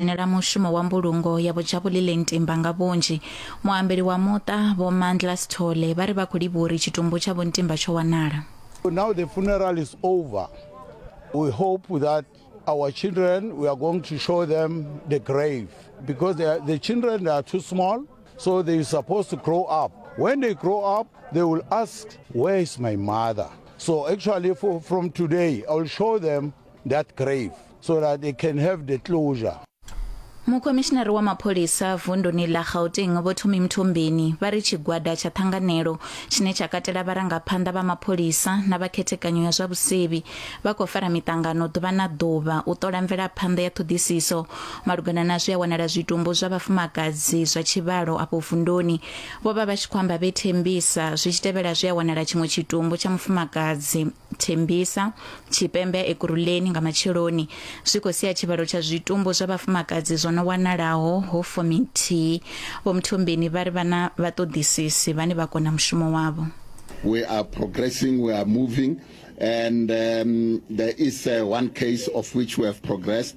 dzhenela mushumo wa mbulungo ya Bojabulileng Timba nga vhunzhi. Muambeli wa muṱa Vho Mandla Sithole vha ri vha khou livhuwa uri tshitumbu tsha Vho Ntimba tsho wanala. Now the funeral is over. We hope that our children, we are going to show them the grave because they are, the children they are too small, so they are supposed to grow up. When they grow up, they will ask, Where is my mother? So actually, for, from today, I will show them that grave so that they can have the closure. mukhomishinari wa mapholisa vunduni ḽa gauteng vho thumi mthombeni vha ri tshigwada tsha ṱhanganelo tshine tsha katela vharangaphanḓa vha mapholisa na vha khethekanyo ya zwa vhusevhi vha khou fara miṱangano ḓuvha na ḓuvha u ṱola mvelaphanḓa ya ṱhoḓisiso malugana na zwi a wanala zwitumbu zwa vhafumakadzi zwa tshivhalo afho vunduni vho vha vha tshi khou amba vhe thembisa zwi tshi tevhela zwi a wanala tshiṅwe tshitumbu tsha mufumakadzi thembisa tshipembe ya ekuruleni nga matsheloni zwi khou sia tshivhalo tsha zwitumbu zwa vhafumakadzi zwo no wanalaho ho fumi nthihi vho mthombeni vha ri vha na vhaṱoḓisisi vhane vha kona mushumo wavho we are progressing, we are moving, and um, there is uh, one case of which we have progressed.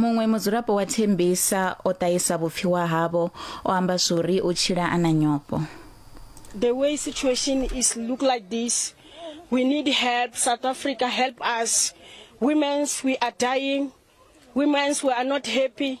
muṅwe mudzulapo wa thembisa o ṱahisa vhupfiwa havho o amba zwori u tshila a na nyofho the way situation is look like this we need help south africa help us women's we are dying women's we are not happy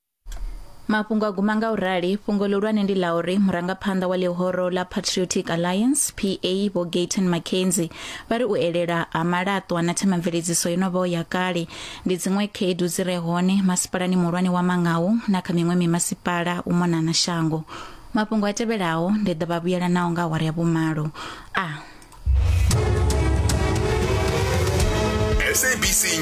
mafhungo a guma nga u rali fhungo ḽihulwane ndi ḽa uri murangaphanḓa wa ḽihoro ḽa patriotic alliance pa vho gayton mackenzie vha ri u elela ha malaṱwa na themamveledziso yo no vhaho ya kale ndi dziṅwe khaedu dzi re hone masipalani muhulwane wa mangawu na kha miṅwe mimasipala u mona na shango mafhungo a tevhelaho ndi ḓo vha vhuyela naho nga awara ya vhumalo a SABC